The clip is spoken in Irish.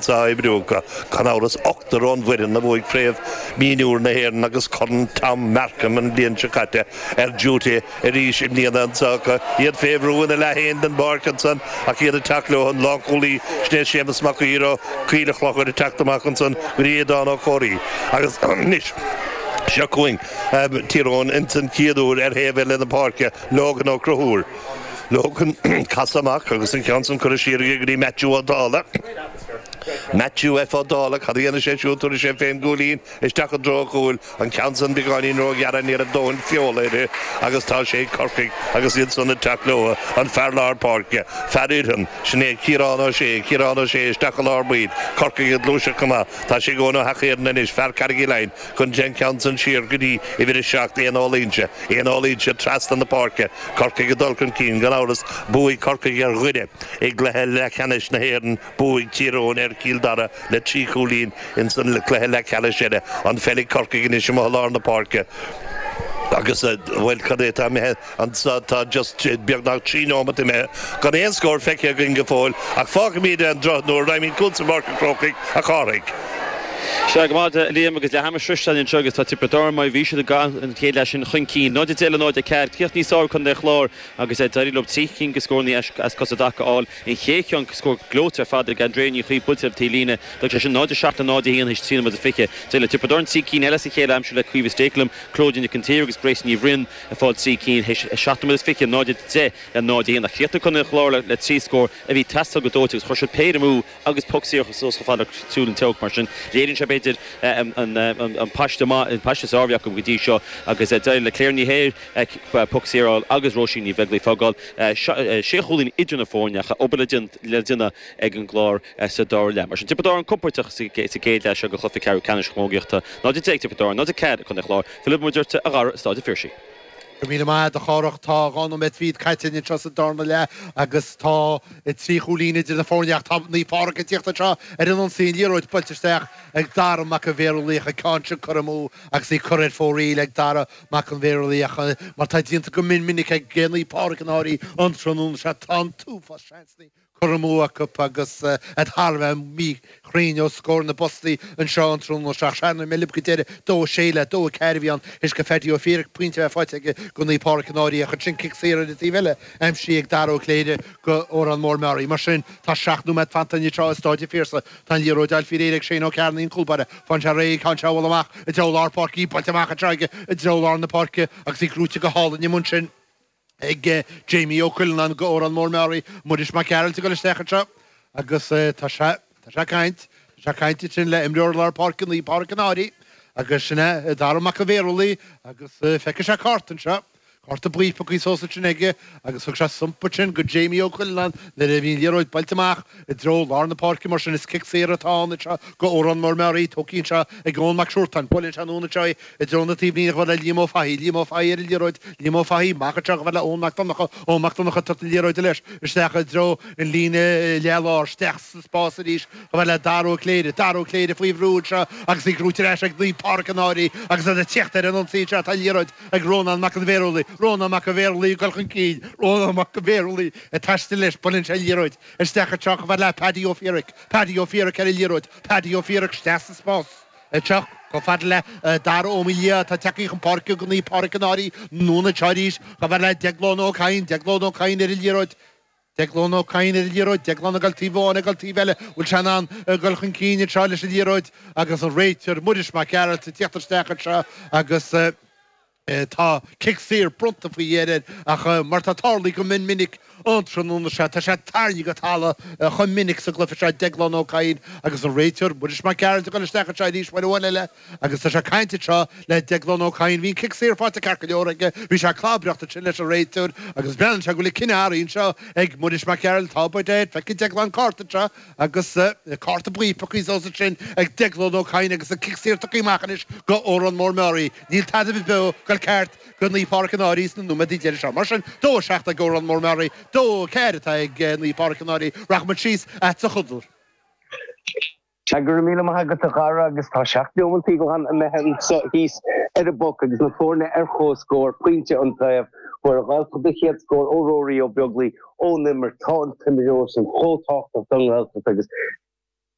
sa oibriú acu. Gan amhras, ochtar ón bhfoireann a bhuaigh Craobh Mhionúir na hÉireann agus Corn Tom Markham an bhliain seo caite ar diúité arís i mbliana anseo acu. Iad fé bhrú ina leath féin den bpáirc ansan ach iad ag teacht leo, an lánchúlaí sin é Séamus Mac Uidhir ó Choill an Chlochair ag teacht amach ansan go dtí Aodán Ó Comhraí agus anois seo chugainn Tír Eoghain insan chéad uair ar thaobh eile na páirce, Logan Ó Conchúir. Logan, casadh amach agus an ceann san curtha siar aige go dtí Matthew Ó Dála. Matthew F. Ó Dála, cad a dhéanfaidh sé siúd? Tabharfaidh sé féin cúilín isteach i dtreo an chúil. An ceann san beagáinín róghearr ní raibh dóthain feola uirthi agus tá sé ag Corcaigh agus iadsan ag teacht leo. An fear lár páirce, fear Iorthan, sin é Ciarán Ó Sé, Ciarán Ó Sé isteach i lár baill. Corcaigh ag gluaiseacht go maith. Tá sé ag Eoghan Ó hEachthairn anois, fear Carraig Uí Leighin. Cuireann sé an ceann san siar go dtí uimhir a seacht, Éanna Ó Loingsigh, Éanna Ó Loingsigh trasna na páirce, Corcaigh ag dul chun cinn gan amhras, bhuaigh Corcaigh ar Dhoire i gcluiche leathcheannais na hÉireann, bhuaigh Tír Eoghain ar Chill Dara le trí chúilín ins an cluiche leathcheannais eile, an pheil ag Corcaigh anois amuigh lár na páirce agus, bhuel, cad é atá imithe? Anseo tá just beagnach trí nóimeat imithe gan aon scór feicthe againn go fóill ach fágfaimid ar an drochuair nuair a fhaighimid cuntas ó Pháirc an Chrócaigh, a Chárthaigh. Sea, go raibh maith agat, a Liam, agus leath ama sroichte againn anseo agus tá Tiobraid Árann mar a bhí siad i gcaitheamh an chéad leath sin chun cinn, 0-10 le 0-4. Críoch níos fearr ag contae an Chláir agus d'éirigh leo trí cinn de scóranna as cosa i dtaca a fháil an chéad cheann, scór gleoite ar fad ag Andrea Ní Chaoimh buailte ar an taobhlíne. D'fhág sé sin 0-7 le 0-1 théis trí nóiméad is fiche. D'éirigh le Tiobraid Árann trí cinn eile as a chéile a aimsiú le Caoimhe Stakelum, Clodagh Nic an tSaoir agus Grace Ní Bhriain. Ag fáil trí cinn théis a seacht nóiméad is fiche, 0-10 le 0-1, ach chríochnaigh contae an Chláir le trí scór a bhí ag teastáil go dóite agus chuir siad péire amú agus poc saor chomh fada agus a shiúil an t-olc. Mar sin, léiríonn sé, b'fhéidir, an paiste maith, an paiste is fearr a bhí acu go dtí seo agus d'éirigh le Claire Ní hEithir poc saor a fháil agus Róisín Ní Bheaglaoich ag fágáil sé chúilín idir na foirne ach tá obair le déanamh ag an gClár sa dara leath. Mar sin, Tiobraid Árann compordach sa gcéad leath seo de Chluiche Ceathrú Ceannais na Camógaíochta, 0-10 ag Tiobraid Árann, 0-4 ag contae an Chláir. Fillfimid ortsa a Dhara i Staid an Phiarsaigh. Go raibh míle maith agat, a Chárthach. Tá dhá nóiméad fichead caite againn anseo sa darna leath agus tá trí chúilín idir na foirne ach tá Naomh Pádraig ag tíocht anseo ar an ionsaí. An liathróid buailte isteach ag Dara Mac an Bhearshúiligh, an ceann sin curtha amú agus í curtha ar fóraoil ag Dara Mac an Bhearshúiligh mar tá déanta go mion minic ag Naomh Pádraig an Fhairche an tráthnóna seo. Tá an t-uafás seansanna. curtha amú acu agus iad thar a bheith míchruinn os comhair na bpostaí anseo an tráthnóna seo. Ach thar na mé libh go deireadh, dó a sé le 2-4 a bhí ann. Théis do Paddy Ó Fiaich pointe a bheith faighte aige go Naomh Pádraig an Fhairche ach ansin cic saor ar an taobh eile aimsithe ag Dara Ó Cléire go Órán Mór-Meáraí. Mar sin, tá seacht nóiméad fanta anois tráth i Staid an Phiarsaigh. Tá an liathróid á fáil faoi réir ag Shane Ó Cearnaigh an cúlbáire. Faigheann sé réidh an ceann seo a bhualadh amach i dtreo lár páirce, í buailte amach anseo aige i dtreo lár na páirce agus í gnóite go hálainn amuigh ansin. ag Jamie Ó Cuilleanáin do Órán Mór-Meáraí, Muiris Mac Gearailt ag dul isteach anseo agus tá sé, tá sé ag caint, tá sé ag caint ansin le imreoir lár páirce Naomh Pádraic an Fhairche agus sin é, Darragh Mac an Bhéarúlaigh agus feicfidh sé cárta anseo, cárta buí pioctha suas ansin aige agus thug sé thump ansin do Jamie Ó Cuilleanáin nuair a bhí an liathróid buailte amach i dtreo lár na páirce mar sin is cic saor atá ann anseo do Órán Mór-Meáraí, tógtha anseo ag Eoin Mac Siúrtáin, buaileann sé anonn anseo í. I dtreo na taobhlíne chomh fada le Liam Ó Fathaigh, Liam Ó Fathaigh ar an liathróid, Liam Ó Fathaigh amach anseo chomh fada le Eoin Mac Donnacha, Eoin Mac Donnacha ag tabhairt na liathróide leis isteach i dtreo an líne leath-lár, isteach sa spás arís chomh fada le Dara Ó Cléirigh, Dara Ó Cléirigh faoi bhrú anseo agus í gnóite ar ais ag Naomh Pádraic an Fhairche agus iad ag tíocht ar an ionsaí anseo tá an liathróid ag Rónán Mac an Bhéarúlaigh, Rónán Mac an Bhéarúlaigh ag dul chun cinn, Rónán Mac an Bhéarúlaigh ag taisteal leis buaileann sé an liathróid isteach anseo chomh fada le Paddy Ó Fiaraic, Paddy Ó Fiaraic ar an liathróid, Paddy Ó Fiaraic isteach sa spás. Isteach chomh fada le Dara Ó Maoildhia atá tagtha chun páirce do Naomh Pádraic an Fhairche anonn anseo arís chomh fada le Deaglán Ó Cadhain, Deaglán Ó Cadhain ar an liathróid, Deaglán Ó Cadhain ar an liathróid, Deaglán ag dul taobh amháin ag dul taobh eile, bhfuil sé in ann dul chun cinn anseo leis an liathróid agus an réiteoir Muiris Mac Gearailt ag teacht isteach anseo agus Tá cic saor bronnta faoi dheireadh ach mar atá tarlaithe go mion minic an tráthnóna seo, tá sé tarraingthe go talamh chomh minic sa gcluiche seo Déaglán Ó Cadhain agus an réiteoir, Muiris Mac Gearailt ag dul isteach anseo arís uair amháin eile agus tá sé ag caint anseo le Déaglán Ó Cadhain. Bhí an cic saor faighte ceart go leor aige, bhí sé ag clabaireacht ansin leis an réiteoir agus breathnaíonn sé go bhfuil an cinneadh athraithe anseo ag Muiris Mac Gearailt. Tá, by dad, feicfidh Déaglán cárta anseo. Agus cárta buí pioctha suas ansin ag Deaglán Ó Cadhain agus an cic saor tugtha amach anois do Órán Mór-Meáraí, níl tada beo ag dul ceart do Naomh Pádraic an Fhairche sna nóiméadaí deiridh seo. Mar sin, dó a seacht ag Órán Mór-Meáraí, dó a ceathair atá ag Naomh Pádraic an Áir. Rachaimid síos chugatsa a Chonaill. Sea, go raibh míle maith agat a chara agus tá seacht neomaintí glan imithe anseo thíos ar an bpoc agus na foirne ar chomhscór, pointe an taobh, fuair an Ghaeltacht a chéad scór ó Rory Ó Beaglaoich, ón imirt. Tá an t-imreoir sin chomh tábhachtach don Ghaeltacht agus.